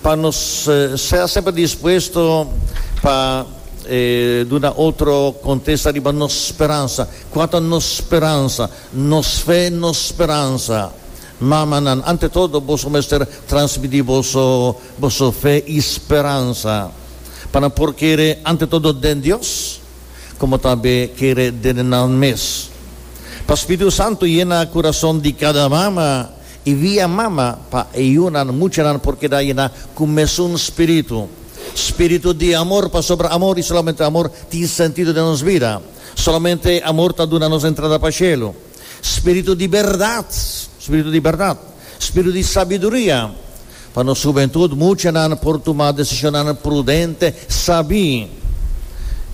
Pa nos sea semper dispuesto pa duna otro contesta riba nos speransa. Cua ta nos speransa? Nos fe, nos speransa. Mamanan, ante todo boso mester transmiti boso boso fe y speransa pa nan por kere ante todo den Dios como tambe kere den nan mes. Pa Spiritu Santo yena curason di cada mama I via mama pa e yunan, muchanan por keda yena ku mesun spiritu. Spiritu di amor, pasobra amor i solamente amor tin sentido den nos bida. Solamente amor ta duna nos entrada pa shelu. Spiritu di bèrdat, spiritu di bèrdat, spiritu di sabiduria, Pa nos hubentud muchanan por tuma decisionnan prudente, sabi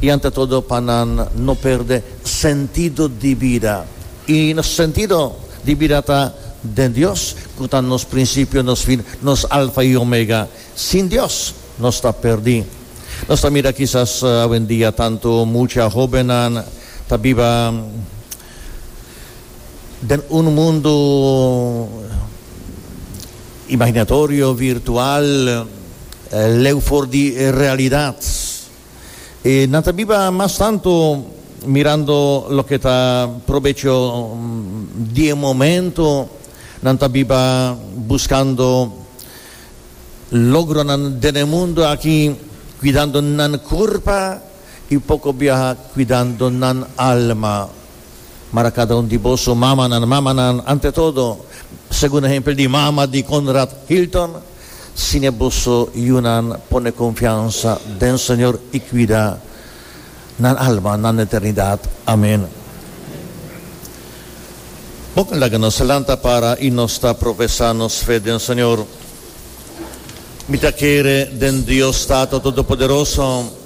y ante todo pa nan no perde sentido di bida. Y nos sentido di bida ta den Dios cu ta nos principio, nos fin, nos alfa y omega. Sin Dios nos ta perdi. Nos ta mira kisas awendia tanto mucha hobennan ta biba Den un mundu imaginatorio, virtual, leu for di realidat, e nan ta biba mas tantu mirando loke ta probecho di e momento, nan ta biba buskando logronan den e mundu aki, kuidando nan kurpa. i poko biaha kuidando nan alma. Mar a kada un di boso mamanan, mamanan, ante todo, segun ehempel di mama di Conrad Hilton, Sine boso yunan pone konfiansa den Señor i kuida nan alma na eternidat. Amen. Bon ke laga nos lanta para i nos ta profesá nos fe den Señor. Mi ta kere den Dios Tato Todopoderoso.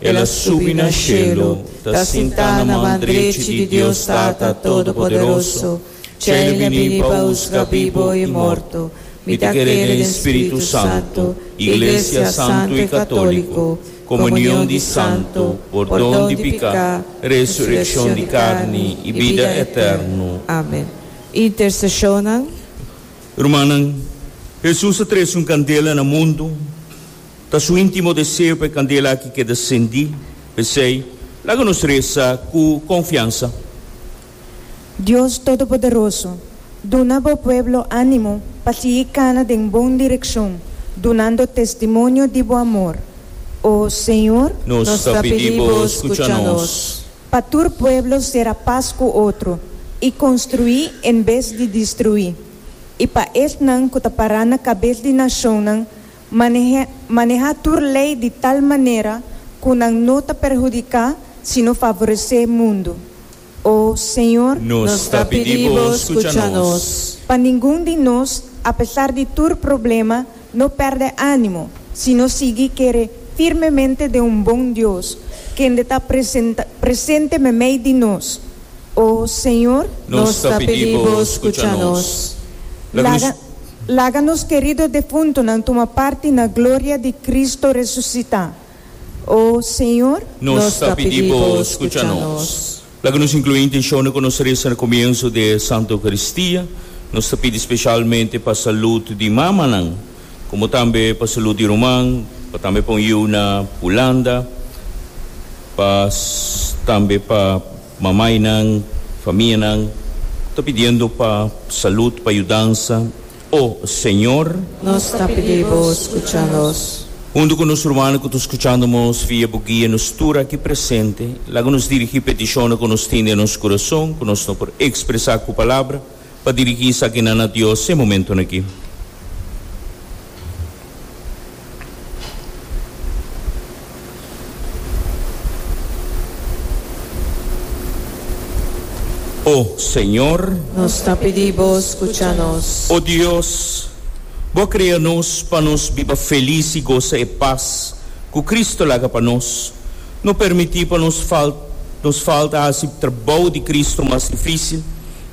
El a subi na shelu, ta sintá na man drechi di Dios Tata Todopoderoso. Tjei e bini pa husga bibu i morto. Mi ta kere den Spiritu Santu, iglesia santu i katóliko, komunion di santu, pordon di piká, resurekshon di karni i bida eternu. Amen. Interseshonnan. Rumannan, Hesus a trese un kandela na mundu. Ta su intimo deseo pa e candela aki keda cendi, pesey laga nos reza cu confiansa. Dios Todopoderoso, duna Bo pueblo animo pa sigui cana den bon direccion, dunando testimonio di Bo amor. O Señor. Nos ta pidi Bo scucha nos. Pa tur pueblo cera paz cu otro, y construi en bes di distrui. Y pa esnan cu ta para na cabes di nacionnan, Maneha tur lei di tal manera cu nan no ta perhudica sino favorece mundo. O Señor. Nos ta pidi Bo scucha nos. Pa ningun di nos, apesar di tur problema, no perde animo, sino sigui kere firmemente den un bon Dios, kende ta presente memey di nos. O Señor, nos ta pidi Bo scucha nos. Laga, laga nos kerido defuntonan tuma parti na gloria di Cristo resucita. O Señor, nos ta pidi Bo scucha nos. Laga nos inclui e intencionnan cu nos reza na comienzo di e Santa Eucaristia. Nos ta pidi specialmente pa salud di mamanan. Como tambe pa salud di ruman, pa tambe pa un yiu na Hulanda, pa tambe pa mamainan, famianan, ta pidiendo pa salud, pa yudansa, O Señor. Nos ta pidi Bo scucha nos. Hundu cu nos rumannan cu ta scuchando nos via Bo guia nos tur aki presente, laga nos dirigi peticionnan cu nos tin den nos curason, cu nos no por expresa cu palabra, Pa dirigí esakinan na Dios e momentonan akí. O Señor. Nos ta pidi Bo skucha nos. O Dios, Bo a krea nos pa nos biba felis i gosa e pas ku Kristu laga pa nos. No permití pa nos falta hasi trabou di Kristu mas difísil.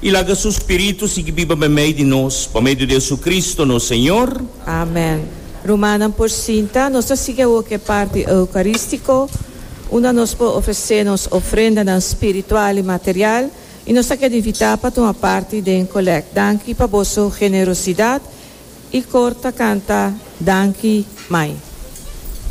I laga su spiritu sigui biba den mei di nos, pa medio di JesuCristo, nos Señor. Amen. Rumannan por sinta. Nos ta sigui awor cu e parti eucaristico, unda nos por ofrece nos ofrendanan spiritual i material, i nos ta keda invita pa tuma parti den collect. Danki pa boso generosidad. E cor ta canta Danki, Mai.